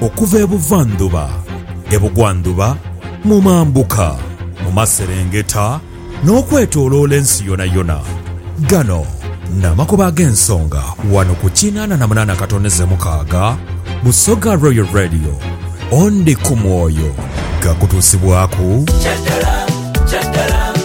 Okuva ebuvandhuba, ebugwandhuba, mu mambuka, mu maserengeta, n'okwetoloola ensi yonayona. Gano n'amakubo ag'ensonga wano ku kinaana na munaana katoneze mukaaga Busoga Royal Radio. Ondi ku mwoyo gakutuusibwaku?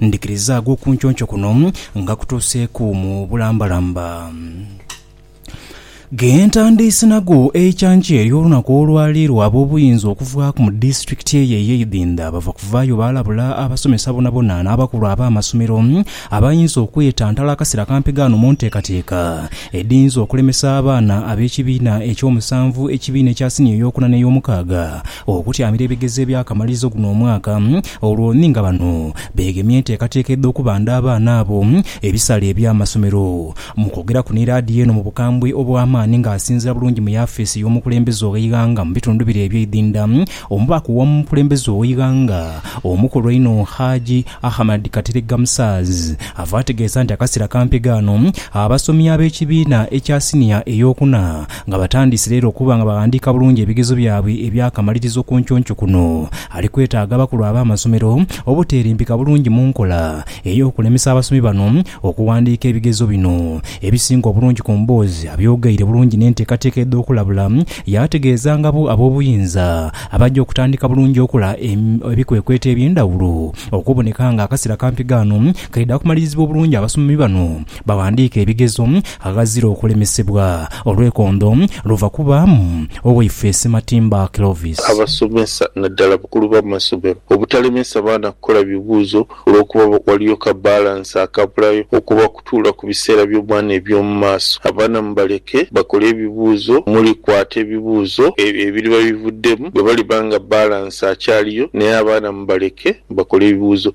Ndhikiriza ag'okunconco kuno nga kutuuseeku mu bulambalamba. Ge ntandiise nago eikyankya ery'olunaku olwali lwa ab'obuyinza okuvaaku mu disitulikiti eyo ey'eidhindha bava kuvaayo baalabula abasomesa bonabona n'abakulu ab'amasomero abayinza okwetantala akasera kampi ghano mu nteekateeka edhiyinza okulemesa abaana ab'ekibiina eky'omusanvu, ekibiina ekya siniya ey'okuna n'ey'omukaaga okutyamira ebigezo eby'akamalirizo guno omwaka olwo ni nga bano beegemye enteekateeka edh'okubanda abaana abo ebisale eby'amasomero. Mu kwogeraku ni laadiyo eno mu bukambwe obw'amaani ng'asinzira bulungi mu yafeesi y'omukulembeze ow'eighanga mu bitundu bire eby'eidhinda, omubaka ow'omukulembeze ow'eighanga omukulu einho Haji Ahamad Kateregga Musaaz ava ategeesa nti akaseera kampi gaano abasomi ab'ekibiina ekya siniya ey'okuna Nga batandise leero okuba nga baghandiika bulungi ebigezo byabwe eby'akamalirizo ku nconco kuno, ali kwetaaga abakulu ab'amasomero obuteerimbika bulungi mu nkola ey'okulemesa abasomi bano okuwandiika ebigezo bino ebisinga obulungi ku mboozi abyogeire bulungi n'enteekateeka edh'okulabula yaategeeza ngabo ab'obuyinza abaja okutandika bulungi okola ebikwekweto eby'endhawulo okuboneka nga akasera kampi ghano kaidha kumalirizibwa obulungi abasomi bano Baghandiika ebigezo aghazira okulemesebwa. Olwekondo luva ku ba Owaife Sematimba Clovis. Abasomesa naddala abakulu b'amasomero obutalemesa baana kukola bibuuzo olw'okuba waliyo ka balansi akabulayo okuba kutuula ku biseera by'omwana eby'omu maaso. Abaana mubaleke bakole ebibuuzo omuli kwata ebibuuzo ebiriba bivuddemu bwe baliba nga balansi akyaliyo naye abaana mubaleke bakole ebibuuzo.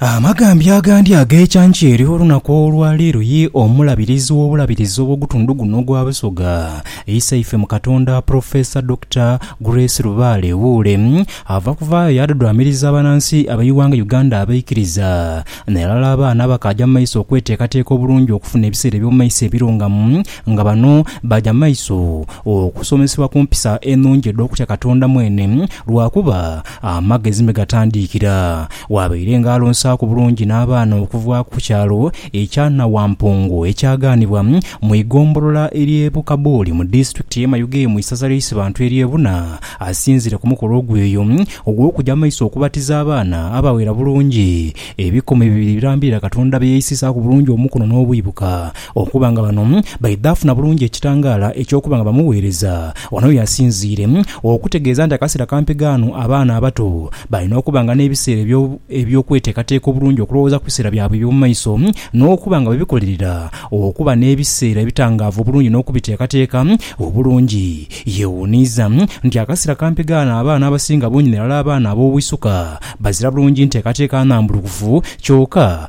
Amagambya agandi ag'ekyankya eri olunaku olwa leero ye Omulabirizi w'Obulabirizi obw'ogutundhu guno ogwa Busoga, Isaife mu Katonda Professor Dokita Grace Lubaale Wuule ava kuvaayo yaadhudhwamiriza abanansi ab'eighanga Uganda abaikiriza n'alala abaana abakaaja mu maiso okweteekateeka obulungi okufuna ebiseera eby'omu maiso ebirungamu nga bano baaja mu maiso okusomesebwa ku mpisa enungi edh'okutya Katonda mwene lwakuba Amagezi me gatandiikira, waabaire nga alonsaaku bulungi n'abaana okuva ku kyalo ekya Nawampungu ekyagaanibwa mu igombolola ery'e Bukabuuli mu disitulikiti y'e Mayuge mu isaza ly'Eisibantu ery'e Buna asinzire ku mukolo ogweyo ogw'okuja maiso okubatiza abaana abawera bulungi ebikumi bibiri ebirambirira Katonda bye yaisisaaku bulungi omukono n'obwibuka Okuba nga bano baidhafuna bulungi ekitangaala eky'okuba nga bamuweereza, wano y'asinziire okutegeeza nti akaseera kampi ghano abaana abato balina okuba nga n'ebiseera eby'okweteekateeka obulungi okulowooza ku biseera byabwe eby'omu maiso n'okuba nga bebikolerera okuba n'ebiseera ebitangaavu obulungi n'okubiteekateeka obulungi. Yeewuuniiza nti akaseera kampi ghano abaana abasinga bungi nairala abaana ab'obwisuka bazira bulungi nteekateeka nnambulukufu kyoka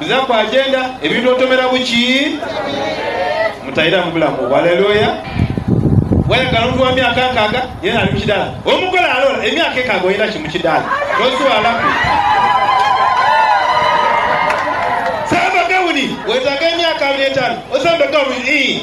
Nziza ku agenda ebintu otomera buki mutairamu bulamu obwo. Alleluia. Wayagala omuntu wa myaka nkaaga yenna ali mu kidaala, omugole alola emyaka ekaaga olina ki mu kidaala? Tozwalaku samba gawuni. Wetaaga emyaka abiri etaanu osambe gawuni? Ii.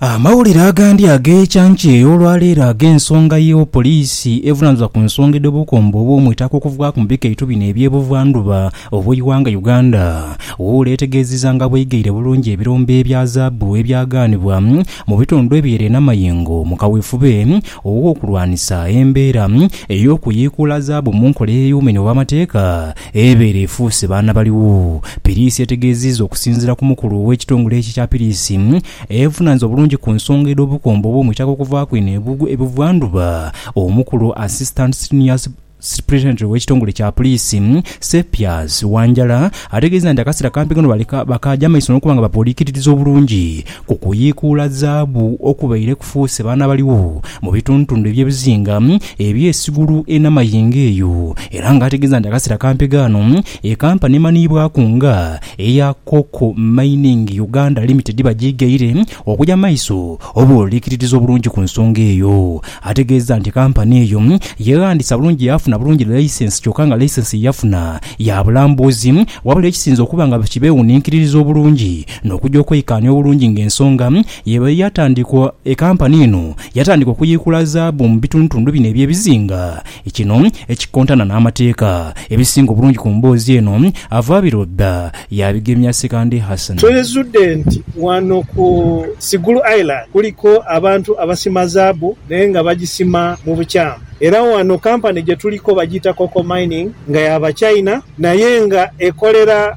Amawulire agandi ag'ekyankya ey'olwa leero ag'ensonga ye Poliisi evunanizibwa ku nsonga edh'obukombo obw'omu itaka okuvughaku mu bikaitu bino eby'e Buva ndhuba obw'eighanga Uganda, Wuula etegeezizza nga bw'eigaire bulungi ebirombe ebya zaabu ebyagaanibwa mu bitundu eby'ere Namayengo mu kawefube ow'okulwanisa embeera ey'okuyiikuula zaabu mu nkola ey'eyuuma enho obw'amateeka Ebeere efuuse baana baligho. Piriisi etegeezizza okusinziira ku mukulu ow'ekitongole ekyo ekya piriisi evunaanyizibwa obulungi ku nsonga edh'obukombo obw'omuitaka okuvaaku eno e buvandhuba, omukulu Assistant Senior Superintendent w'ekitongole kya puriisi Sepias Wanjala ategeezezza nti akaseera kampi kano bakaagya maiso n'okuba nga bapoliikitiriza obulungi Okuyiikuula zaabu okubaire kufuuse baana baligho mu bitundutundu eby'ebizinga eby'esigulu enh'amayengo eyo, era nga ategeeza nti akaseera kampi ghano ekampa n'emanhiibwaku nga eya Koko Mining Uganda Limited bagyighaire okuja mu maiso oba olw'eikiririzo obulungi ku nsonga eyo. Ategeeza nti kampani eyo yeghandiisa bulungi yaafuna bulungi laisensi kyoka nga laisensi ye yafuna ya bulambuzi wabula ekisinze okuba nga kibeewuninkiririza obulungi N'okuja okweikaanya obulungi ng'ensonga y'eba ye yatandikwa, ekampani eno yatandika okuyiikula zaabu mu bitundutundu bino eby'ebizinga. Kino ekikontana n'amateeka. Ebisinga obulungi ku mboozi eno ava Birudha yaabigemya Sekande Hassan. Twezudde nti wano ku Sigulu Island kuliko abantu abasima zaabu naye nga bagisima mu bukyamu era wano kampani gye tuliko bagiyita Coco Mining nga ya Bachina naye nga ekolera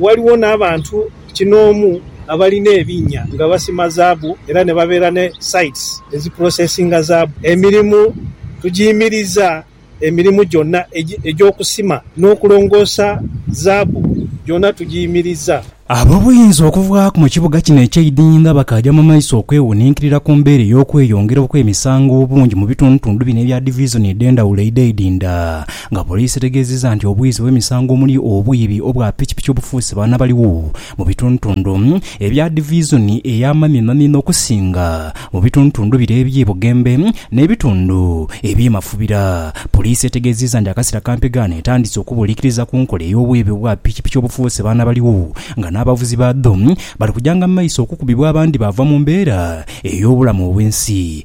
Ghaligho n'abantu kinoomu abalina ebinnya nga basima zaabu era ni babeera ni sites ezipulosesinga zaabu. Emirimu tugiimiriza emirimu gyonna egy'okusima n'okulongoosa zaabu gyona tugiimiriza. Ab'obuyinza okuvaaku mu kibuga kino eky'eidinhi nga bakaaja mu maiso okwewuninkirira ku mbeera ey'okweyongera okw'emisango obungi mu bitundutundu bino ebya divizoni edh'endhawulo eidha eidhinda Nga poliisi etegeezizza nti obwizi bw'emisango omuli obwiibi obwa pikipiki obufuuse baana baligho mu bitundutundu ebya divizoni eya Mamimami n'okusinga mu bitundutundu bire eby'e Bugembe n'ebitundu eby'e Mafubira. Poliisi etegeezizza nti akasera ka mpigaano etandise okubuulikiriza ku nkola ey'obwiibi obwa pikipiki obufuuse baana baligho nga n'abavuzi baadho bali kujanga mu maiso okukubibwa abandi baava mu mbeera ey'obulamu obw'ensi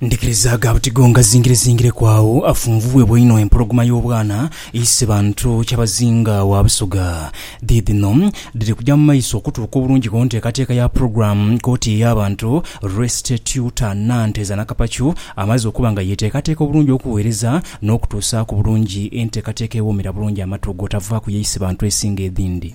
Ndikirizaaga buti go ngazingirezingireku agho afunvubwebwa inho empologoma y'obwana eise bantu kyabazinga wa Busoga. Dhiidhino dhiri kuja mu maiso okutuuka obulungi ku nteekateeka ya pulogulaamu koti ey'abantu Restituta Nanteza Nakapacu amaze okuba nga yeeteekateeka obulungi okuweereza n'okutuusaaku bulungi enteekateeka ewoomera bulungi amatu ogw'otavaaku y'eise bantu esinga edhindi.